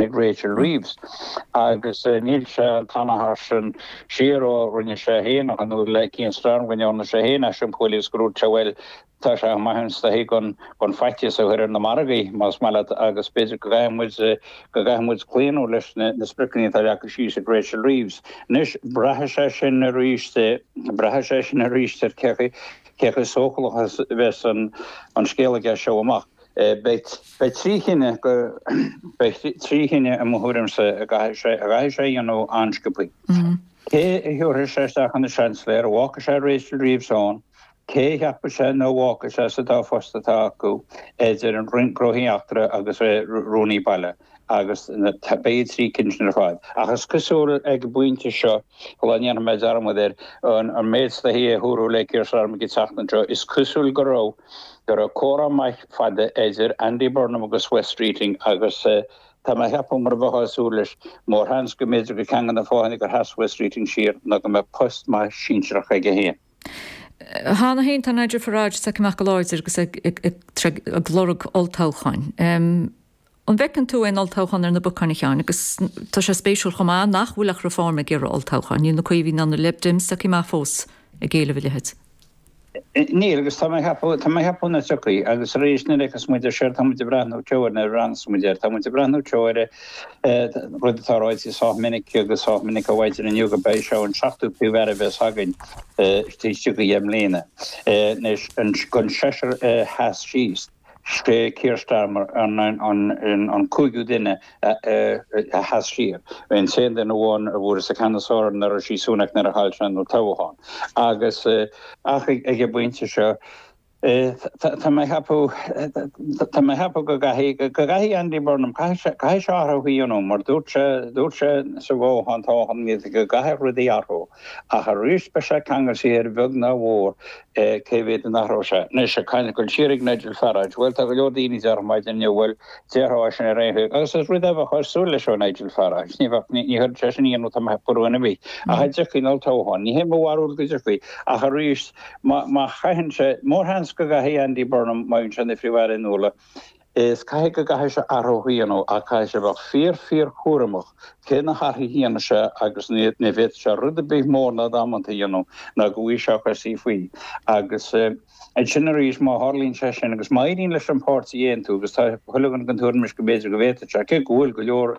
ag Rachel Reeves, agus níl sé an t-achar sin siar ó rinne sé féin a ghnó le Keir Starmer, rinne Orna sé féin as Simcoe Leaves go raibh bhuel tá sé maith an stoitheadh gan gan faitíos a chur ar na margaí, más maith leat, agus b'fhéidir go gcaithfidh muid go gcaithfidh muid claonadh leis na spriocanna atá leagtha síos ag Rachel Reeves. Anois, braithfidh sé sin arís braithfidh sé sin arís ar cé cé chomh sócúlach is a bheas an an scéal aige as seo amach. Beidh trí chinneadh, i mo thuairimse, a gcaithfidh sé a dhéanamh an-sciopthaí. Cé a thiúrfaidh sé isteach ina Seansailéir? An bhfágfaidh sé Rachel Reeves ann? Cé a cheapfaidh sé nó an bhfágfaidh sé sa dá phost atá acu idir an Roinn Gnóthaí Eachtra agus Rúnaí Baile? agus b'fhéidir na trí cinn sin ar fad. Ach is cosúil ag an bpointe seo, sula ndéanfaidh mé dearmad air, an méid atá ag tarlú le Keir Starmer ag teacht anseo, is cosúil go raibh go raibh comhrá maith fada idir Andy Burnham agus Wes Streeting agus tá mé ag ceapadh, mar a bheifeá ag súil leis, mórsheans go mb'fhéidir gur ceann de na fáthanna gur sheas Wes Streeting siar ná go mbeadh post maith sinsearach aige féin. Cheana féin tá Nigel Farage tagtha amach go láidir agus ag lorg olltoghcháin. An bhfeiceann tú aon olltoghchán ar na bacáin, a Sheáin? Agus tá sé spéisiúil chomh maith nach bhfuil ach Reform ag iarraidh olltoghcháin. Níl na Caomhaigh ná na Lib Dems tagtha amach fós ag éileamh a leithéid. Níl, agus tá mé ag ceapadh, tá mé ag ceapadh nach dtiocfaidh. Agus arís, nuair a fheiceas muid ar siar, tá muid ag breathnú, nuair a bhreathnaíos muid air, tá muid ag breathnú siar ar rud atá ráite sách minic agus sách minic a mhaítear inniu gurb é seo an seachtú Príomh-Aire a bheas againn istigh i dheich mbliana. Anois, den seisear a sheas síos. Is é Keir Starmer an cúigiú duine a sheas siar, an t-aon duine amháin a bhfuair sa cheannas orm ná Rishi Sunak nuair a chaill sé an t-olltoghchán, agus ach ag an bpointe seo tá mé ag ceapadh go gcaithfidh Andy Burnham, caithfidh sé athrú a dhéanamh mar dúirt sé, dúirt sé sa bhfothoghchán go gcaithfeadh rudaí athrú ach arís beidh sé ag ceangal siar a bheag nó a mhór Cé mhéad a n-athróidh sé? Anois, ag caint ag goil siar ag Nigel Farage. Bhuel, tá go leor daoine a déarfadh maidin inniu, bhuel, déarfá é sin ar aon chaoi, agus is rud é a bheifeá ag súil leis ó Nigel Farage. Ní bheadh, ní chuirfeadh sé sin aon iontas ar dhuine ar bith. Ach an dtiocfaidh an olltoghchán? Ní hé mo bharúil go dtiocfaidh, ach arís, má chaitheann sé, mór sheans go gcaithfidh Andy Burnham, má bhíonn sé ina Phríomh-Aire in Iúil, Is caithfidh go gcaithfidh sé athrú a dhéanamh, ach caithfidh sé a bheith fíor-fíorchúramach cé na hathruithe a dhéanfaidh sé agus ní bhféadfaidh sé rud ar bith mór ná damanta a dhéanamh nó go bhfaighidh sé a chosa faoi. Agus ansin arís, má tharlaíonn sé sin agus má éiríonn leis an páirtí a aontú agus tá chuile dhuine den tuairim anois go mb'fhéidir go bhféadfaidh sé, cé go bhfuil go leor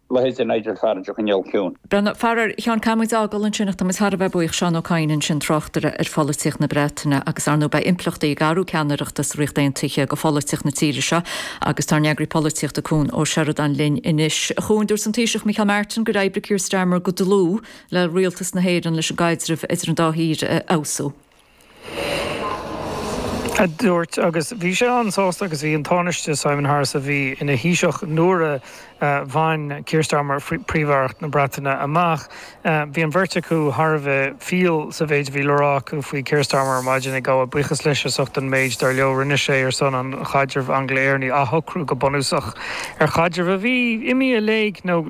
Leithéid de Nigel Farage a choinneáil ciúin. Faraor, a Sheáin, caithfidh muid é a fhágáil ansin ach tá muid thar a bheith buíoch Seán Ó Catháin ansin, tráchtaire ar pholaitíocht na Breataine agus ar ndóigh beidh impleachtaí ag athrú ceannaireachta sa Ríocht Aontaithe do pholaitíocht na tíre seo agus tá ár n-eagarthóir polaitíochta Cuan Ó Seireadáin linn anois. A Chuain, dúirt an Taoiseach Micheál Martin gur oibrigh Keir Starmer go dlúth le Rialtas na hÉireann leis an gcaidreamh idir an dá thír a fheabhsú. A dúirt, agus bhí sé an-sásta agus bhí an Tánaiste, Simon Harris, a bhí ina Thaoiseach nuair a bhain Keir Starmer Príomh-Aireacht na Breataine amach, bhí an bheirt acu thar a bheith fial sa mhéid a bhí le rá acu faoi Keir Starmer ar maidin, ag gabháil buíochas leis as ucht an méid, dar leo, a rinne sé ar son an chaidrimh Angla-Éireannaigh, athshocrú go bunúsach ar chaidreamh a bhí imithe i léig nó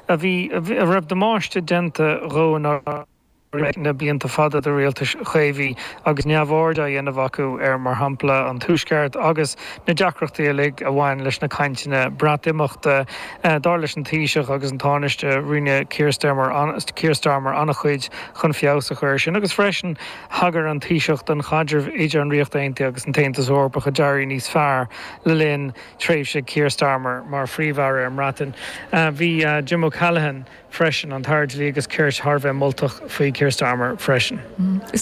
a raibh damáiste déanta dhó. leis na blianta fada de rialtais Chaomhacha agus neamhaird á dhéanamh acu ar, mar shampla, an Tuaisceart agus na deacrachtaí uilig a bhain leis na cainteanna Breatimeachta. Dar leis an Taoiseach agus an Tánaiste, rinne Keir Starmer an-chuid chun feabhas a chur air sin agus freisin thagair an Taoiseach don chaidreamh idir an Ríocht Aontaithe agus an tAontas Eorpach a d'éirigh níos fearr le linn thréimhse Keir Starmer mar Phríomh-Aire ar an mBreatain. Bhí Jim O'Callaghan. freisin, an tAire Dlí agus Cirt thar a bheith moltach faoi Keir Starmer freisin. Is.